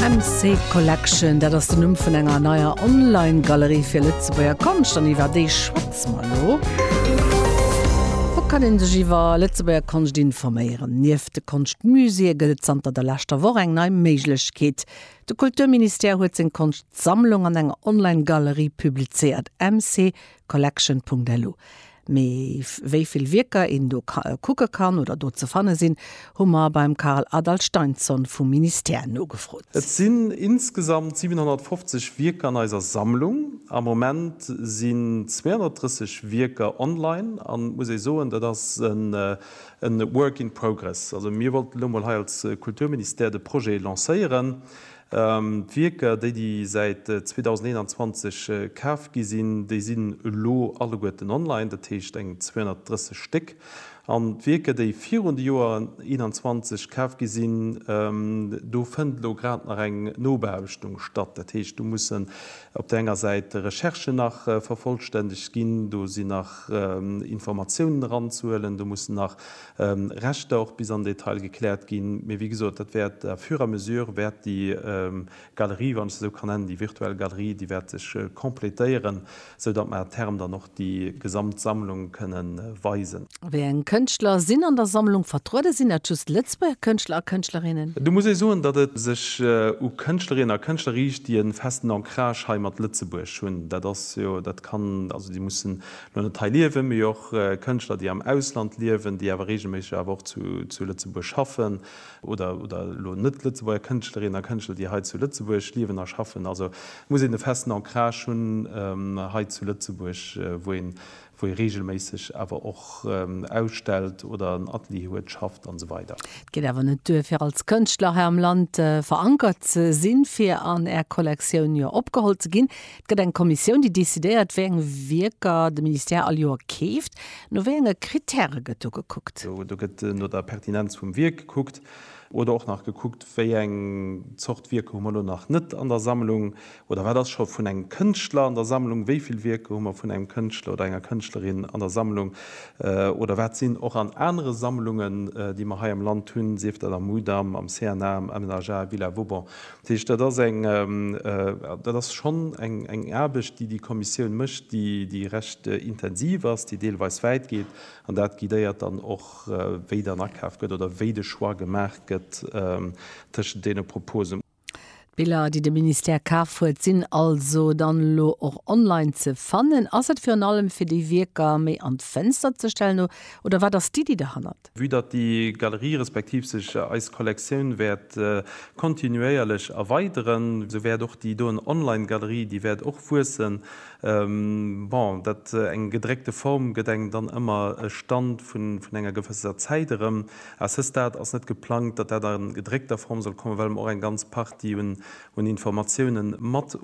MC Collection, dat ass den Numm vun enger neier Online-Galerie fir Lëtzebuerger Konscht an iwwer déi schwätze mer elo. Wou kann ee sech iwwer Lëtzebuerger Konscht informéieren? Nieft de Konschtmuséeë gëtt et zanter der leschter Woch eng nei Méiglechkeet. De Kulturministère huet seng Konschtsammlung an enger Online-Galerie publizéiert. MC Collection.lu. Mee wéivill Wierker een do kucke kann oder do ze fanne sinn, hu mer beim Carl Adalsteinsson vum Ministère nogefrot. Et sinn insgesamt 750 Wierker an eiser Sammlung. Am Moment sinn 230 Wierker online an et muss ee soen, dat ass e Work in progress. Also mir wollten elo mol hei als Kulturministère de Projet lancéieren. D'Wierker, déi déi säit 2021 kaf gi sinn, déi sinn elo alleguerten online, dat heescht eng 230 Stéck. An d'Wierker, déi virun de Joer 21 kaf gi sinn, do fënnt elo grad nach eng Nobeaarbechtung statt. Dat heescht, do mussen op der enger Säit Recherchen nach vervollstännegt ginn, do sinn nach Informatiounen eranzehuelen, do mussen nach Rechter och bis an Detail gekläert ginn. Mee wéi gesot, dat wäert à fur à mesure wäert déi Galerie, wann ech se esou kann nennen, déi virtuell Galerie, déi wäert sech completéieren, sou datt mer à terme dann och déi gesamt Sammlung kënne weisen. Wéi eng Kënschtler sinn an der Sammlung vertrueden? Sinn dat just Lëtzebuerger Kënschtler a Kënschtlerinnen? Do muss ee soen, datt et sech u Kënschtlerinnen a Kënschtler riicht, déi e festen Ancrage hei mat Lëtzebuerg hunn. Dat ass jo, dat kann, also déi mussen Mir hunn et hei liewen, mee och Kënschtler, déi am Ausland liewen, déi awer reegelméisseg awer och zu Lëtzebuerg schaffen, oder elo Net-Lëtzebuerger Kënschtlerinnen a Kënschtler, déi hei zu Lëtzebuerg liewen a schaffen. Also muss een e festen Ancrage hunn hei zu Lëtzebuerg, wou ee reegelméisseg awer och ausstellt oder en Atelier huet, schafft an esou weider. Et geet awer net duer, fir als Kënschtler hei am Land verankert ze sinn, fir an Är Kollektioun jo opgeholl ze ginn. Et gëtt eng Kommissioun, déi decidéiert, wéi eng Wierker de Ministère all Joer keeft. No wéi enge Krittäre gëtt do gekuckt? Do gëtt no der Pertinenz vum Wierk gekuckt oder och nach gekuckt, wéi eng Zort Wierker hu mer elo nach net an der Sammlung oder wat ass scho vun engem Kënschtler an der Sammlung, wéi vill Wierker hu mer vun engem Kënschtler oder enger Kënschtlerin an der Sammlung oder wat sinn och an anere Sammlungen, déi mer hei am Land hunn, sief dat am Mudam, am CNA, am MNHA, Villa Vauban. Dat heescht, dat ass eng, dat ass schonn eng Aarbecht, déi déi Kommissioun mécht, déi recht intensiv ass, déi deelweis wäit geet. An dat guidéiert dann och, wéi dann akaf gëtt oder wéi de Choix gemaach gëtt tëschent deene Proposen. D'Biller, déi de Ministère kaf huet, sinn also dann elo och online ze fannen. Ass et virun allem, fir déi Wierker méi an d'Fënster ze stellen, oder wat ass d'Iddi derhannert? Vue datt déi Galerie respektiv sech eis Kollektioun wäert kontinuéierlech erweideren, sou wäert och déi doen Online Galerie, déi wäert och wuessen. Bon, dat eng gedréckte Form gëtt engem dann ëmmer e Stand vun enger gewësser Zäit erëm. À ce stade ass net geplangt, datt dat a gedréckter Form soll kommen, well mer och eng ganz Partie un un Informatiounen mat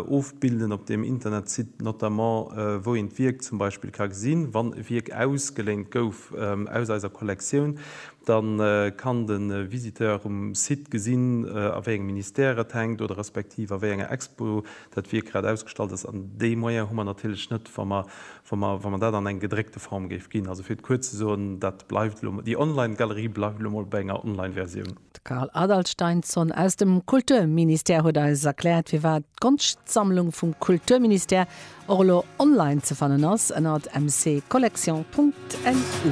ofbilden op deem Internetsite, notamment wou een d'Wierk zum Beispill ka gesinn. Wann e Wierk ausgeléint gouf aus eiser Kollektioun, da kann de Visiteur um Site gesinn, a wéi engem Ministère et hänkt oder respektiv a wéi enger Expo dat Wierk grad ausgestallt ass. An dee Moyen hu mer natierlech net, wa mer, wa mer, wa mer dat an eng gedréckte Form géif ginn. Also fir et kuerz ze soen, dat bleift elo, déi Online-Galerie bleift elo mol bei enger Online-Versioun. D'Carl Adalsteinsson aus dem Kulturministère huet eis erkläert, firwat d'Konschtsammlung vum Kulturministère och elo online ze fannen ass ënnert mccollection.lu.